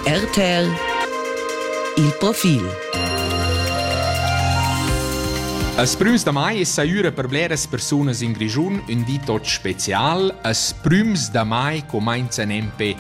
RTL Il profil As prüms da mai es saüra per bleras persunas in Grischun ün di tot special. As prüms da mai comenza nempe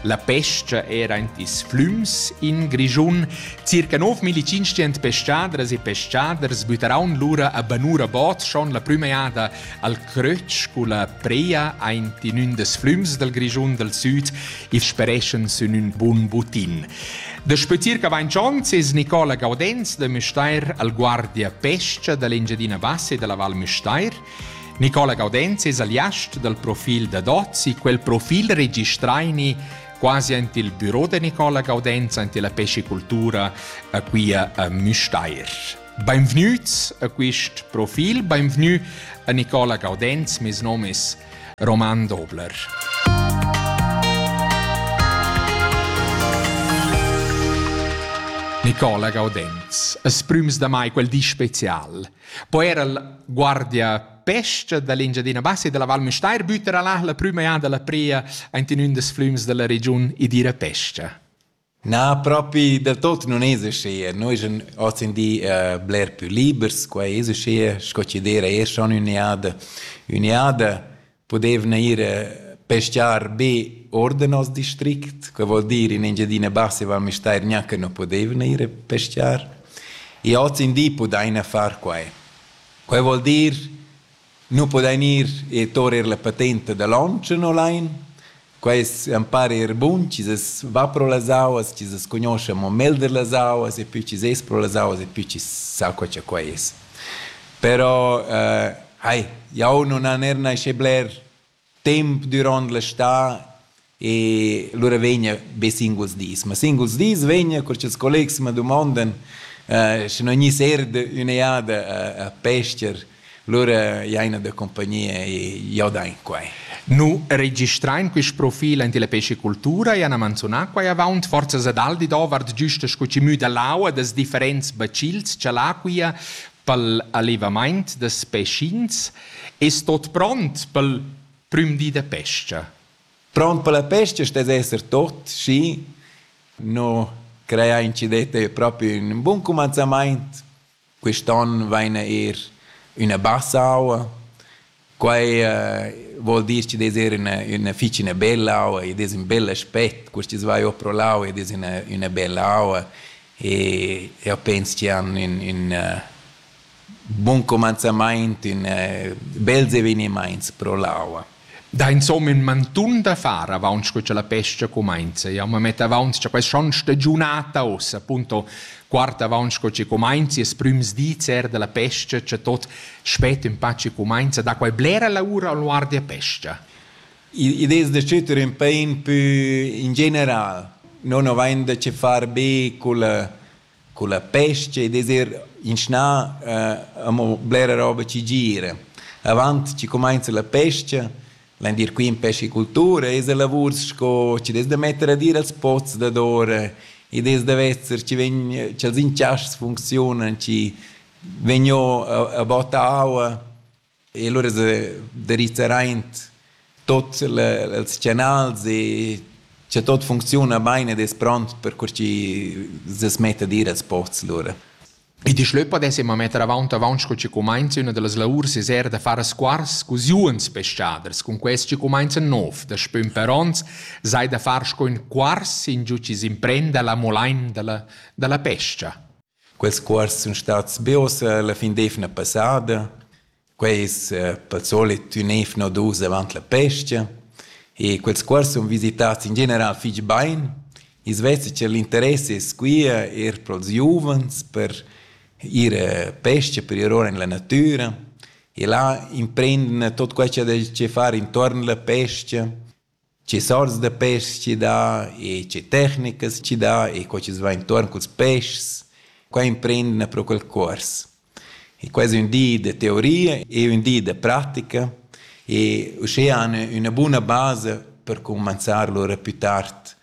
la pesca era in tis flüms in Grischun. Circa 9500 pescadras e pescaders bütaraun lura a Banura Bot schon la prüma jada Al crötsch culla prea aint in ün des flüms dal Grischun dal süd il spereschan sün ün bun butin. Da sputir che vain dschontz es Nicola Gaudenz da Müstair al guardia pescha da l'Engiadina Bassa e dalla Val Müstair. Nicola Gaudenz es aliast dal profil da Dozzi, quel profil registraini quasi ant il büro da Nicola Gaudenz, ant la pescicultura a qui a Müstair. Beinvgnüts a quist profil, beinvgnü a Nicola Gaudenz, mes nom es Roman Dobler. Nicola Gaudenz, es prüms da mai quel di special. Poi era il guardia pesca dall'Engiadina Bassa e della Val Mestair bütera là la prüma an della pria aint in ün des flüms della regiun e dire pesca. Na, propi del tot nun es uschia. Noi eschan hozindì bler pü libers, quai es uschia, sco chi d'eira eir schon ün'eada. Ün'eada pudevna ir peschiar be or da nos district, que voul dir in Engiadina Bassa e Val Müstair gnanca nu pudevna ir a peschiar. E hozindì pudaina far quai. Quai voul dir nu pudain ir e tour eir la patenta da Lonchon olain. Quaists am para eir bun chi s'es va pro las auas, chi s'es cugnuoscha amo melder las auas e pü chi s'es pro las auas e pü chi sa co cha quai es. Però, ai, jau nun han eir naschè bler temp duront l'estate e lura vegna be singuls dis. Ma singuls dis vegna, cur ch'ils collegs ma dumondan eh, sche non gni serde ün'eada a, a pester, lura jaina da compagnia e jo da in quai. Nu registrain quist profil in la pescicultura e han manzunà quai avaunt forzas ad Aldi davart güsta sco chi müda l'aua das differents bacils cha l'acquia pel allevamaint das pecins Es tot pront pel prüm di da pescha? Pront per la pescha stess esser tot, schi no crei aint chi det eir propi ün bun cumanzamaint. Quist'on vaina eir üna bassa aua. Quai vuol dir chi'd es eir üna üna fich üna bella aua, id es ün bel aspet. Quistas vai our pro l'aua, id es üna üna bella aua e eu pens chi han ün ün Buon comanzamaint in eh, bels evenimaints pro l'aua. Da insomma in mantun da far avaunt che la pesca comincia. Jau ma metto avaunt cha questa schon stagiunata ossa, appunto guarda avaunt che ci comincia es prüms dis er della pesca, che tot spet un pa ci comincia da quai blera lavura al guardi a pesca. Idees da cüter un pain pü in general. Non ho vain da che far be col culla pescha ed es eir inschnà amo blera roba chi gira. Avant chi cumainza la pescha, l'endir quint pescicultura es a lavur sco chi'd es da metter ad ir als pots dadora ed es da vezer chi vegn cha'ls inchaschs funcziunan, chi vegn o a botta aua E lura derizzeraint tuot ils canals e cha tuot funcziuna bain ed es pront per cur chi s'es met ad ir als posts lura. I di schlö podess imma metter avaunt avaunt sco chi cumainza üna da las laurs es eir da far squars cus juns peschaders, cun quest chi cumainza nouv da spün per ons sai da far sco ün cuars ingiò chi s'imprenda la molain da la da la pes-cha. Quels cuors sun stats be uossa la fin d'eivna passada. Quai es pel solit ün eivna u dus avant la pes-cha e quels cuors sun visitats in general fich bain. I's vesa cha l'interess es quia eir pro'ls giuvens per ir a pes-cha, per ir our in la natüra e là imprendene tot quai cha dais dschè far intuorn la pes-cha Tge sorts da peschs chi dà e tge tecnicas chi dà e co chi's va intuorn culs peschs, qua imprendina pro quel cuors. E quai es ün di da teoria e ün di da pratica e uschea han üna buna basa per cumanzar lur a plü tard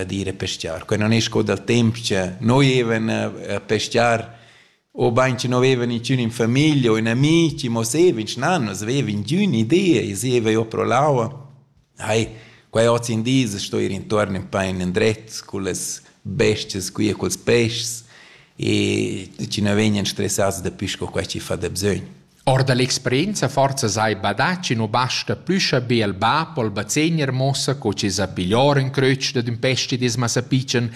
ad ir a peschiar. Quai non es co dal temp cha noi evan a peschiar obein che no veva niciun in famiglia o in amici, mo seva in schnanas, veva ingün idea e seva io pro l'aua. Hai, quai oz in dis sto ir intorno in pain indret con las bestias qui e culs peschs e ci ne vegnan stressats da più co quai chi fa da bsögn. Or da l'experienza forsa sai badà chi nu basta plü cha be al bap o al bazegner muossa co chi s'ha piglior ün crötsch dad ün pestidis massapitschen,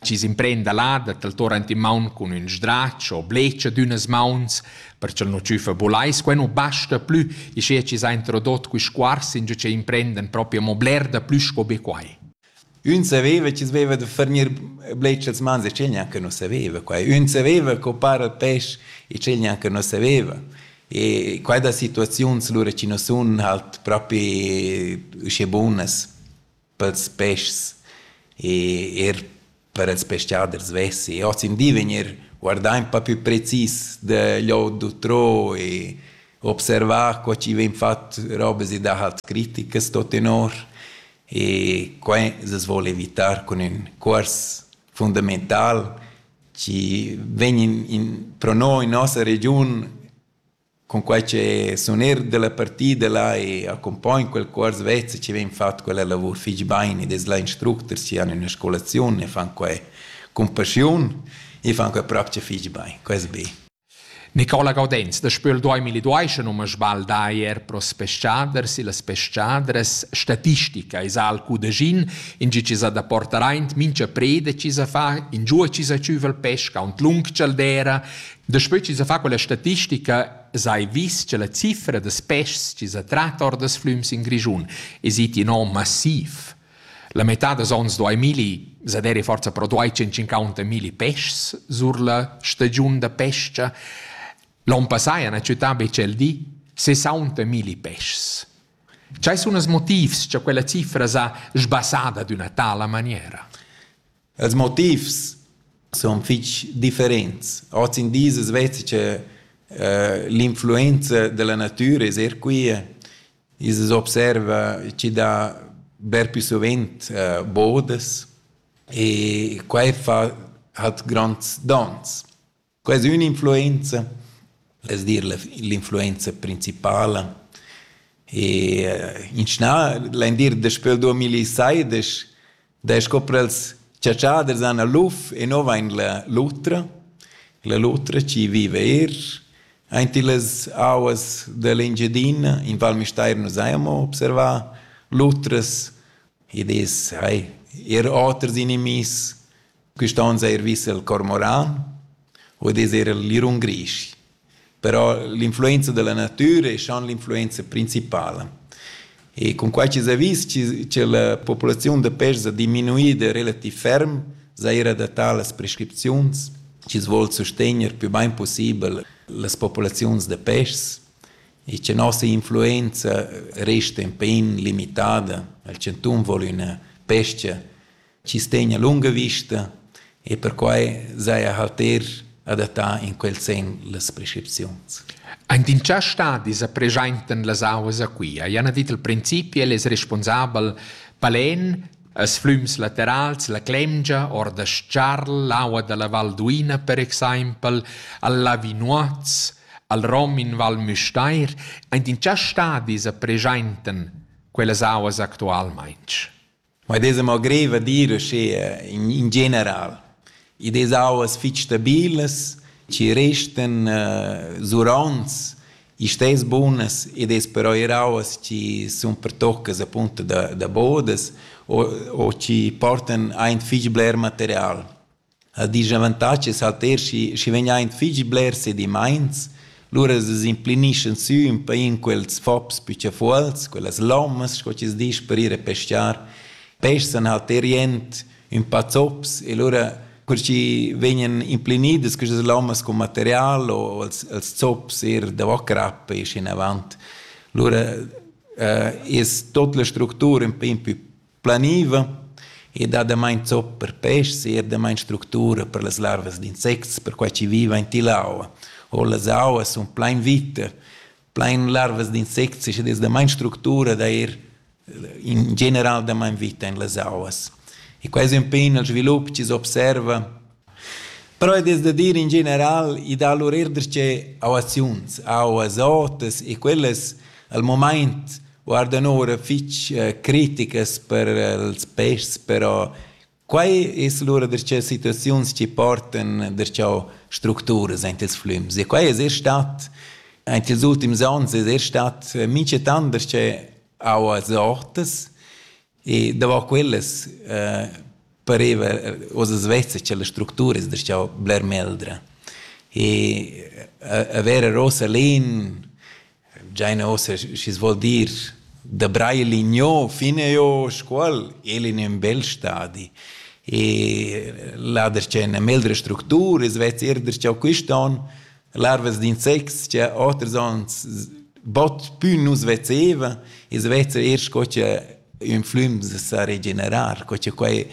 chi s'imprenda là da taltor ant in maun cun ün sdrach o blecha d'ünas mauns, perch'el nu tschüfa bulais. Quai nu basta plü, ischia chi s'ha introdot quist cuors ingio ch'ei imprendan propi amo bler da plü sco be quai. Ün saveva chi's veva da furnir bletsch als mans e tgei gnanca nu saveva quai. Ün saveva co para il pesch e tgei gnanca nu saveva. E quai da situaziuns lura chi nu sun halt propi uschè bunas pels peschs. E eir per ils pescaders vessi ozendi vegnir guardà in po più precis da lò d'utrò e observà co chi vegn fat robas e dahat criticas tot tenor e quai s'as voul evitar cun ün cuors fundamental chi vegn in pro no in nossa regiun Cunquei che sun eir dalla partida là e accumpogn quel cuors vez e chi vegn fat quella lavur fich bain ed es là instructers chi han üna scolaziun e fan quai cun paschiun, i fan quai propcha fich bain, quai es be. Nicola Gaudenz da Spöl duamilli duaischa nu m'ha sbaldà eir pro s-peschaders. Illas peschadras statistica esa al cudaschin, ingio chi s'ha da portar aint mincha preda chi s'ha fa, ingiua chi s'ha tschüva il pesch, aunt lung cha'l d'eira, Daspö chi s'ha fat quella statistica s'hai vis cha la cifra da peschs chi s'ha trat or das flüms in Grischun es it in on massiv. La metà dals ons do ai milli, s'ha deri forsa però duai 150 milli peschs sur la stagiun da pes-cha. L'on passà ha na ciutà be tschel di 60 milli peschs. Chai sun els motivs cha quella cifra s'ha sbassada d'üna tala maniera? Els motivs sun fich differents. Hoz in dis as veza che l'influenza da la natüra es eir quia. I's as observa chi dà bler più suvent bodas e quai fa hat gronds dons. Quai es ün'influenza, es a dir l'influenza principala. E in schnà l'indir daspö 2016 da scoprir els chatschaders han a luf e no vain la lutra, la lutra chi viva eir aint illas auas da l'Engiadina. In Val Müstair nu s'haja amo observà lutras ed es hai eir oters inimihs Quist on s'ha eir vis il cormoran, vul dir eir il lirun grisch. Però l'influenza da la natüra es schon l'influenza principala. E cun quai chi s'ha vis chi cha la populaziun da pêrs ha diminuida relativ ferm, s'ha eir adattà las prescripziuns chi's voul sustegner più bain pussibel las populaziuns da pêrs e cha nossa influenza resta ün pêin limitada. Il chantun voul üna pes-cha chi stegna lunga vista e perquai saja halter adattà in quel sen las prescripziuns. Aint in tschà stadi sa preschaintan las auas a Quia. Jan ha dit il principi, el es responsabel palen, as flüms laterals, la Clemgia, or da Scharl, l'aua da la Val d'Uina per exaimpel, al Lavinuoz, al Rom in Val Müstair, aint in tschà stadi sa preschaintan quellas auas actualmaing. Ma id esa mo greiv a dir uschea in in general. Id es auas fich stabilas, chi restan zuronts, istess bunas ed es però eir auas chi sun pertoccas appunto da da bodas o o chi portan aint fich bler material. A disavantatgs ha Ter schi schi vegn aint fich blers sedimaints, lura s'implignischan sü ün pa in quels fops püchafuols, quellas lommas sco chi's disch per ir a pescar. Pessan ha Ter jent ün pa zops e lura cur chi vegnan implinidas quistas lommas cun material o els els zops eir davo crappa esch inavant. Lura es tuot la structura ün pa impü planiva e dat damain zop per peschs e er damain structura per las larvas d'insects, perquai chi viva in till'aua. O las auas sun plain vita, plain larvas d'insects ed es damain structura da ir in general damain vita in las auas. E quai es ün pe ün svilup chi s'observa Però ed es da dir in general, i dà lur eir darcheu auaziuns, auas otas e quellas al mumaint guardan oura fich criticas per ils peschs, però quai es lura darcheu situaziuns chi portan darcheu structuras aint ils flüms e quai es eir stat aint ils ultims ons es eir stat minchatant darcheu auas otas E davant quellas eh, pareva oz svessa che las structuras da schau bler meldra. E avere rosa lin, giaina ossa, schi vuol dir, da braille ligno fine io scuol, el in un bel stadi. E là der c'è una meldra structura, es vez er der c'au quiston, larvas d'insects che oters onns bot pü nus vezevan, ils vezza eir sco che ün flüm sa regenerar, co che quai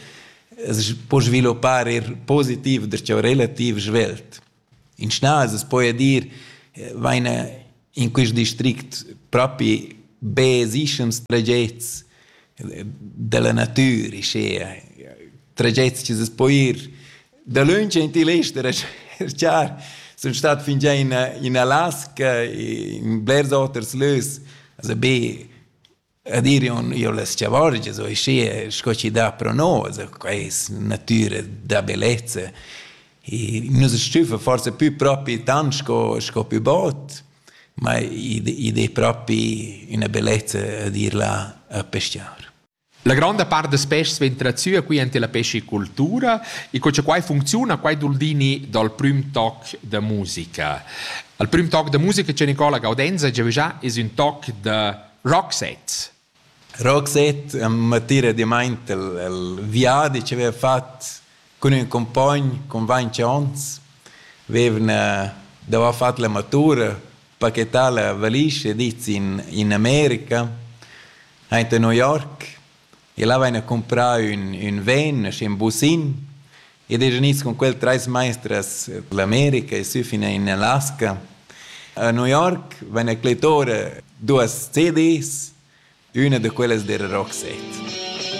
as po sviluppar eir positiv, der cha relativ svelt. In schnas, as poja dir, vaina in quist district propi be esischans tragets della natüra, schea, tragets chi s'es po ir dalöntsch in til ester a cerchar. Sun stat fingià in in Alaska, in blers oters lös, also be Ed ir on io las chavorgias o schi sco chi dà pro nos, quai es natüra da bellezza. Nus stüffa forsa pü propi tant sco sco pü bod, ma id es propi üna bellezza d'ir là a peschiar. La gronda part da peschs vegn tratüa qui ante la pescicultura e co cha quai funcziuna, quai doul dini dal prüm toc da musica. Al prüm toc da musica cha Nicola Gaudenza giavüschà es ün toc da Roxette. Roxette m'attira dimaint il, il viadi che avev fat cun ün cumpogn cun vainch ons. Vevn davo fat la matura, pachetà la valisch e dit in in America, aint a New York. El haveva comprau ün, ün ven schi in busin ed es gnids cun quel treis maestras dall'America e sü fin in Alaska. A New York van a clettora duas CDs, üna da quellas dera Roxette.